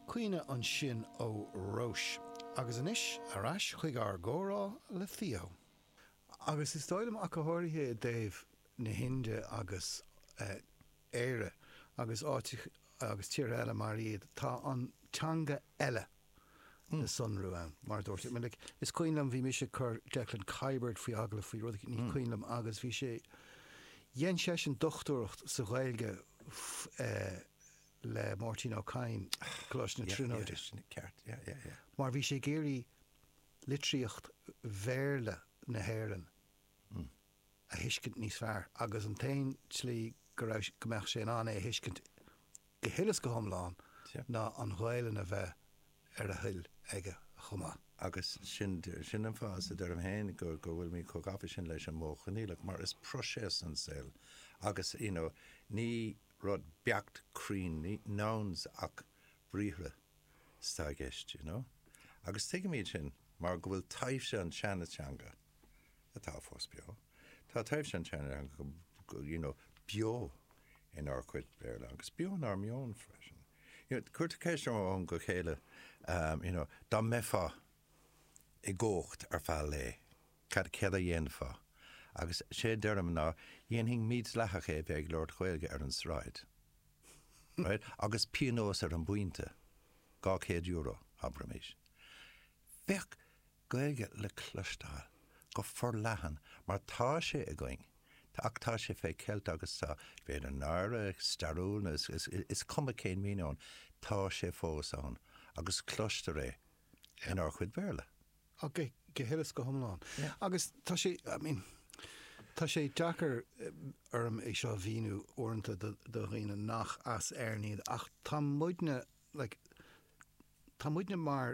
Cuimhne ansin ó Róis. Agus anois ar ais chuig ár gcomhrá le Theo. Agus is dóigh liom ach go háirithe i dtaobh na hInde agus Éire agus áiteacha agus tíortha eile mar iad, tá an teanga eile, le sonrú ann. Mar a dúirt go minic, is cuimhin liom, bhí mise ag cur Declan Kiberd faoi agallamh faoi rud, ní cuimhin liom, agus bhí sé, dhein seisean dochtúireacht sa Ghaeilge le Máirtín Ó Cadhain, Coláiste na Tríonóide. Sin ceart, yeah, yeah, yeah. Mar bhí sé ag iarraidh litríocht Bhéarla na hÉireann a. a thuiscint níos fearr agus an t-aon tslí go raibh, go mbeadh sé in ann é a thuiscint go huile is go hiomlán ná an Ghaelainn a bheith ar a thoil aige chomh maith. Agus sin, sin an fáth, is a deirim féin, go, go bhfuilimid chomh gafa sin leis an Mhodh Choinníollach mar is proiséas an saol agus, you know, ní rud beacht cruinn, ní nouns ach briathra atá i gceist, you know. Agus tuigimid sin mar go bhfuil taibhse an tseana-teanga. atá fós beo. Tá taibhse an tseanteanga you know beo inár gcuid Béarla agus beo inár meon freisin. You know, cuirtear ceist ó am go chéile um you know dá mbeifeá i gcumhacht ar feadh lae, cad, céard a dhéanfá? Agus sé a deirim ná dhéanfainn mídhleathach é a bheith ag labhairt Ghaeilge ar an tsráid. Right? Agus pionós ar an bpointe, dhá chéad euro, abraimis. Féach! Gaeilge le cloisteáil go forleathan mar tá sé againn, tá, ach tá sé fé cheilt agus tá, b'fhéidir náire stairiúil nó is cuma cén míniú ann, tá sé fós ann agus cloistear é inár chuid Béarla. Ach go huile is go hiomlán. Agus tá sé, I mean, tá sé deacair orm é seo a mhíniú uaireanta do dhaoine nach as Éirinn iad ach tá muidne, like, tá muidne mar,